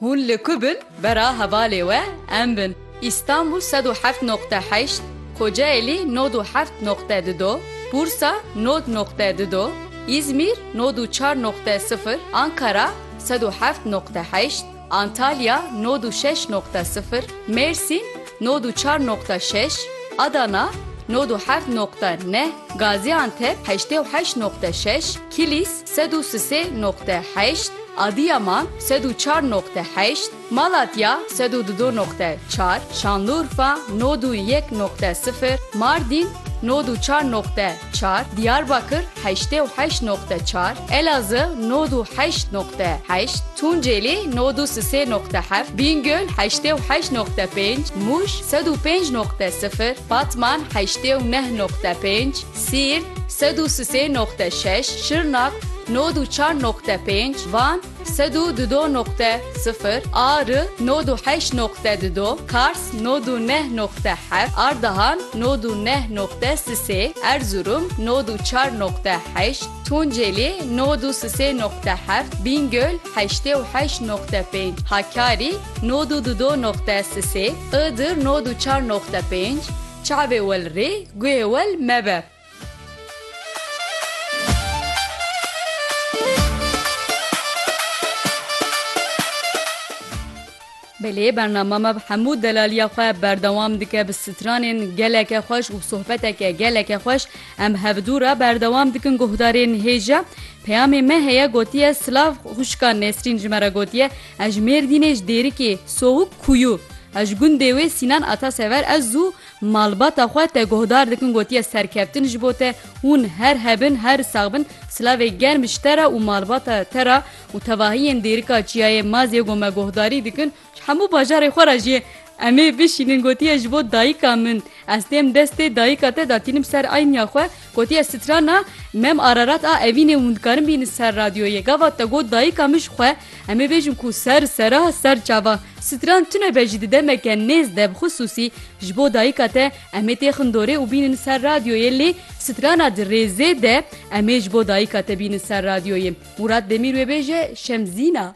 Hûn li ku bin bera hevalê we em bin. Îstanbûl sed û heft noqte heşt, Kocaelî nod û heft noqte di do, Bursa nod noqte di do, Îzmîr nod û çar noqte sifir, Ankara sed û heft noqte heşt, Antalya nod û şeş noqte sifir, Mêrsîn nod û çar noqte şeş, Adana nod û heft noqte neh, Gazîantep heştê û heşt noqte şeş, Kilîs, Sed û sisê noqte heşt, Adiyaman, sed û çar noqte heşt, Malatya, sed û dudo noqte çar, Şanlurfa, nod û yek noqte sifir, Mardîn, nod û çar noqte çar, Diyarbakir, heştê û heşt noqte çar, Elazığ, nod û heşt noqte heşt, Tunceli, nod û sisê noqte heft, Bîngöl, heştê û heşt noqte pênc, Mûş, sed û pênc noqte sifir, Batman, heştê û neh noqte pênc, Siirt, sed û sisê noqte şeş, Şirnak, nod û çar noqte pênc, Van, sed û dudo noqte sifir, Ari, nod û heşt noqte dudo, Kars, nod û neh noqte heft, Ardahan, nod û neh noqte sisê, Erzurum, nod û çar noqte heşt, Tunceli, nod û sisê noqte heft, Bîngöl, heştê û heşt noqte pênc, Hakkari, nod û dudo noqte sisê, Iğdır, nod û çar noqte pênc, Çavê wel rê guhê wel mebe. Belê bernama me bi hemû delaliya xwe berdewam dike bi stranên geleke xweş û sohbeteke geleke xweş em hevdû re berdewam dikin guhdarên hêja. Peyamê me heye gotiye silav xwişka Nesrîn ji me re gotiye Ez ji Mêrdînê ji Dêrikê, Sohuk Kuyu. Ez ji gundê wê Sînan Atasever ez û malbata xwe te guhdar dikin gotiye serkeftin ji bo te hûn her hebin her sax bin silavê germ ji te re û malbata te re û tevahiyên Dêrika Çiyayê Mazê go me guhdarî dikin ji hemû bajarê xwe re jê emê bişînin gotiye ji bo dayika min ez têm destê dayika te da tînim ser eyniya xwe Gotiye strana Mem Ararat a evînê hûn dikarin bînin ser radyoyê. Gava te got dayika min ji xwe em ê bêjin ku ser sera ser çava. Stran tune be jî di demeke nêz de bi xisûsî ji bo dayika te em ê têxin dorê û bînin ser radyoyê lê strana di rêzê de em ê ji bo dayika te bînin ser radyoyê. Mûrat Demîr wê bêje Şemzîna.